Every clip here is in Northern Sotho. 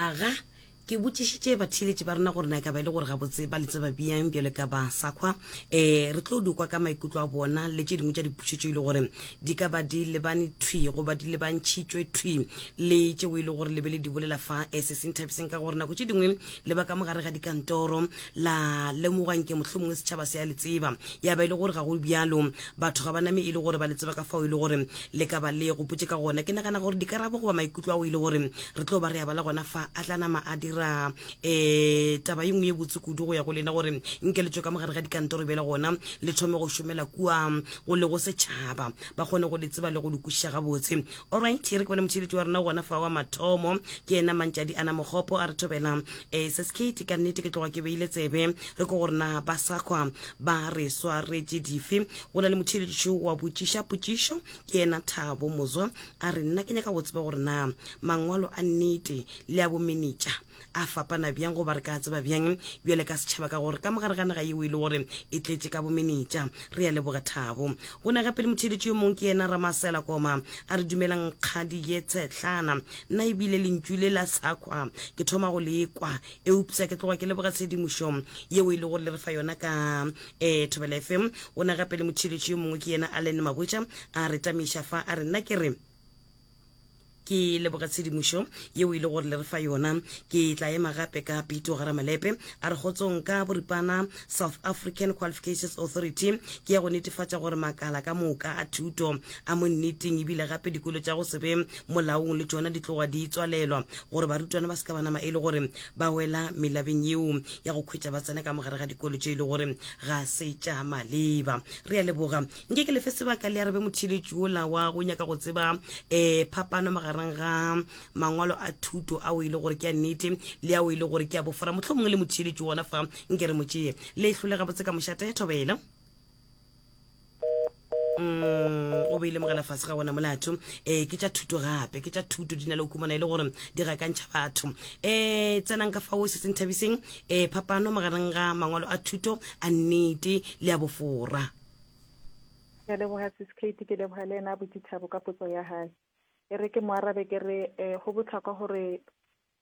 Aga, ke botšišitše batheeletši ba rena gore na e ka ba e le gore gabotse ba le tseba bjang bjale ka ba sa kgwa. Um re tlo dikwa ka maikutlo a bona le tše dingwe tša dipušetšo e le gore di ka ba di lebane thwi goba di lebantšhitšwe thwi le tšeo e le gore le be le di bolela fa um se se nthabiseng ka gore nako tše dingwe le ba ka mogare ga dikantoro la lemogwa nke mohlomongwe setšhaba se ya le tseba ya ba e le gore ga go bjalo batho ga ba name e le gore ba le tseba ka fao e le gore le ka ba le gopotse ka gona ke nagana gore dikarabo goba maikutlo ao e le gore re tlo ba re ya bala gona fa a tla nama a dira um taba ye nngwe ye botse kudu go ya go lena gore nke le tswe ka mogare ga dikantoro bjela gona le thome go šomela kua go le go setšhaba ba kgone go le tseba le go le kwešiša gabotse olright re ke bone motšheletši wa rena gona fa wa mathomo ke ena mantšadi ana mogopo a re thobela e se sekete ka nnete ke tloga ke beile tsebe re ko gore na ba sakgwa ba re swaretše dife go na le motheeletšo wa botšiša potšišo ke yena thabo mozwa a re nna ke nyaka go tseba gore na mangwalo a nnete le a bomenetša a fapana bjang goba re ka tseba bjang bjale ka setšhaba ka gore ka mogare ga naga yeo e le gore e tletše ka bomenetša re ya leboga thabo go na gape le motheeletšo yo mongwe ke yena ramasela koma a re dumelang kgadi ye tshetlana Nna e bile lentšu le la sakwa ke thoma go le kwa, eupsa ke tloga ke leboga tshedimošo yeo e le gore le re fa yona ka eh, Thobela FM. Go na gape le motšheletši yo mongwe ke yena Allen Mahwetša a re tamiša fa a re nna ke re ke leboga tshedimošo yeo e le gore le re fa yona ke tla ema gape ka pito ga ramalepe a re kgotsong ka boripana south african qualifications authority ke ya go netefatša gore makala ka moka a thuto A mo nneteng ebile gape dikolo tša go se be molaong le tšona di tloga di tswalelwa gore barutwana ba se ka ba nama e le gore ba wela melabeng yeo ya go khwetša ba tsena ka mogare ga dikolo tše e le gore ga se tša maleba. Re a leboga. Nke ke lefe sebaka le arabe motheeletši ola wa go nyaka go tseba um phapano magareng ga mangwalo a thuto ao e le gore ke a nnete le ao e le gore ke a bofora mohlomongwe le motheeletši ona fa nke re mo tšee le hlolega botse ka mošate thobela mm, o be e lemogela fase ga wona molato um ke tša thuto gape ke tša thuto di na le kumana e le gore di gakantšha batho um tsenang ka fao se se nthabiseng um phapano magareng ga mangwalo a thuto a nnete le a bofora ke leboga siskate ke leboga le ena botšitšhabo ka potso ya gae e re ke mo arabe ke re um go botlhokwa gore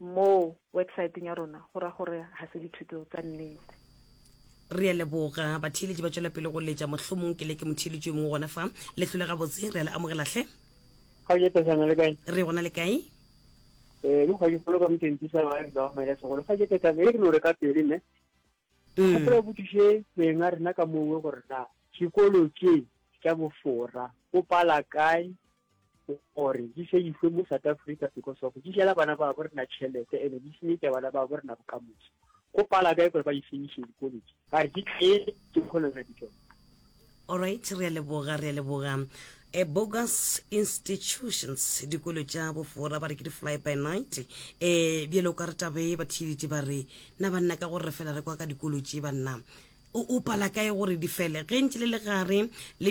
Mo websaeteng ya rona go ra gore ga se dithuto tsa nnete. Re a leboga. Batheeletši ba tšwela pele go letša. Mohlomong ke leke motheeletši yo mongwe gona fa. Le hlole gabotse. Re a le amogela hle. Ga o je Petsana, le kae? Re gona le kae? Ee, le kgwadi kgolo ka motšentši sa ba ga o maile segolo. Ga je Petsana, e re lo re ka pele ne. Ke kgopela o botšiše beng a rena ka mongwe gore na sekolo tše tša bofora o pala kae? gore di seifwe mo south africa because of di jela bana ba bo rena tšhelete ene di senyetsa bana ba bo rena bokamoso go pala kae gore ba di senyise dikoledi a re di tletse ke kgona ra ditsone Alright, re a leboga, re a leboga. E bogus institutions dikolo tša bofora ba re ke di-fly by night um bjale o ka re tabe ba thiliti ba re na banna ka gore re fela re kwa ka dikolo tše banna o pala kae gore di fele ge ntse le le gare le